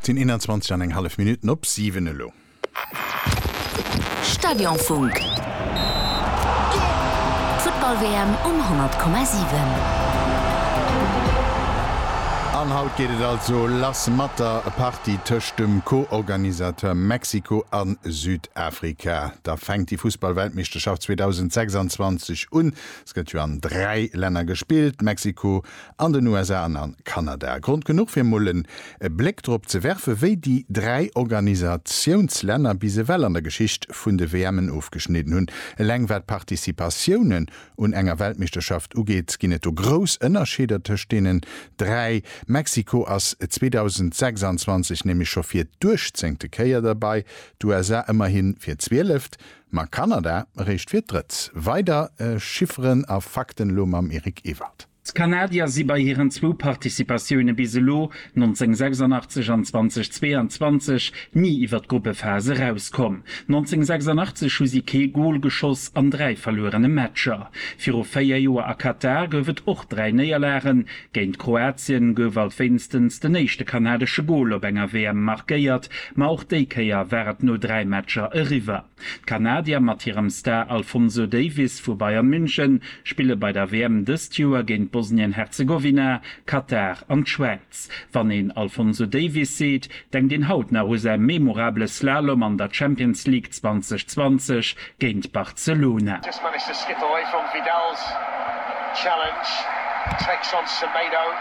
Et sinn 21 an eng hallef Minutten op 7 elo. Stadionfunk. D'Futtball-WM um 100,7. An haut geet et also lass mat der Partie tëscht dem Co-Organisateur Mexiko a Südafrika. Da fänkt déi Fussball-Weltmeeschterschaft 2026 un. Se gëtt jo an dräi Länner gespillt, Mexiko, an den USA an a Kanada. Grond genuch fir mol en Bléck drop ze werfen, wéi déi dräi Organisationslänner bis ewell an der Geschicht vun de WMen ofgeschnidden hunn. Eleng wat d'Participatiounen un enger Weltmeeschterschaft ugeet, ginn et do grouss Ënnerscheeder tëscht deenen dräi. Mexiko ass 2026 nämlech scho fir d'uechtzéngte Kéier derbei, d'USA ëmmerhi fir d'zwieleft, ma Kanada eréischt fir d'drëtt. Weider Chifferen a Fakten elo mam Eric Ewald. D'Kanadier si bei hiren zwou Participatioune bis elo, 1986 an 2022, ni iwwer d'Gruppephas erauskomm. 1986 hu si kee Gol geschoss an dräi verluerene Matcher. Viru véier Joer a Katar gouf et och dräi Néierlagen. Géint Kroatien gouf alt wéinstens den éischte kanadesche Gol op enger WM markéiert, ma och déi Kéier war et no dräi Matcher eriwwer. D'Kanadier mat hirem Star Alfonso Davies vu Bayern München spille bei der WM dëst Joer géint Bosnien-Herzegowina, Katar an d'Schwäiz. Wann een Alfonso Davies seet, denkt een haut nach u säi memorabele Slalom an der Champions League 2020 géint Barcelona.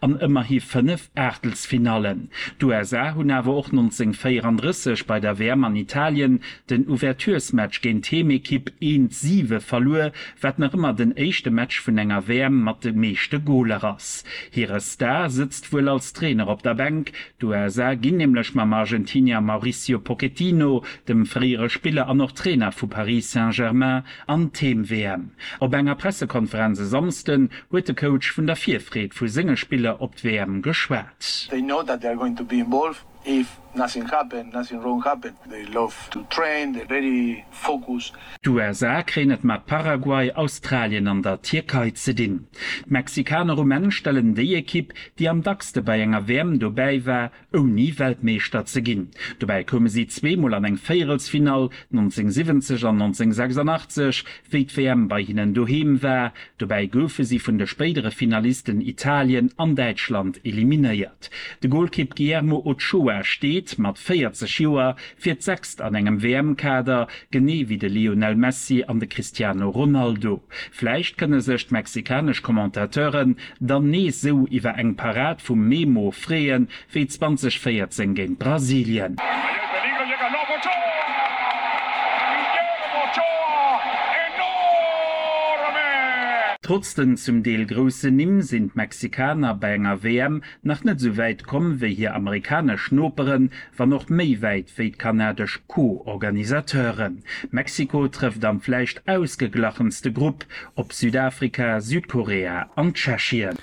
an ëmmerhi 5 Aachtelsfinallen. D'USA hunn awer och 1934 bei der WM an Italien den Ouverturesmatch géint d'Heemekipp eent siwe verluer, wat nach ëmmer den éischte Match vun enger WM mat de meeschte Goler ass. Hire Star sëtzt wuel als Trainer op der Bänk, d'USA ginn nämlech mam Argentinier Mauricio Pochettino, dem fréiere Spiller an och Trainer vu Paris Saint-Germain, An d'Heem-WM. Op enger Pressekonferenz e Samsden huet de Coach vun der Virfreed vu senge Spiller op d'WM geschwat. They know that they are going to be involved if nothing happen, nothing wrong happen. They love to train, they're very focused. D'USA kréien et mat Paraguay, Australien an der Tierkei ze dinn. D'Mexikaner um Enn stellen déi Ekipp, déi am dackste bei enger WM dobäi war, ouni Weltmeeschter ze ginn. Dobäi koume si zweemol an eng Véierelsfinall, 1970 an 1986, wéi d'WM bei hinnen doheem war. Dobäi goufe si vun de spéidere Finalisten Italien an Däitschland eliminéiert. De Golkipp Guillermo Ochoa steet mat 40 Joer fir d'sechst an engem WM-Kader, genee wéi de Lionel Messi an de Cristiano Ronaldo. Vläicht kënne sech d'mexikanesch Commentateuren Dann nees sou iwwer eng Parad vum Memo freeën wéi 2014 géint Brasilien. Trotz den zum Deel groussen Nimm sinn d'Mexikaner bei enger WM nach net sou wäit komm wéi hir amerikanesch Noperen, wann och méi wäit wéi d'kanadesch Co-Organisateuren. Mexiko trëfft am vläicht ausgeglachenste Grupp op Südafrika, Südkorea an Tschechien.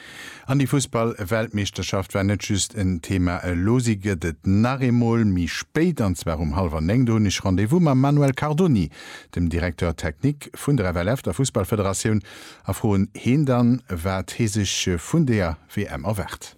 An déi Fussball-Weltmeeschterschaft war net just en Thema. Elo si gëtt et nach eemol méi spéit, an zwar um hallwer néng. Do hunn ech Rendez-vous mam Manuel Cardoni, dem Directeur technique vun der FLF, der Fussballfederatioun, a froen heen dann, wat hee sech vun där WM erwaart.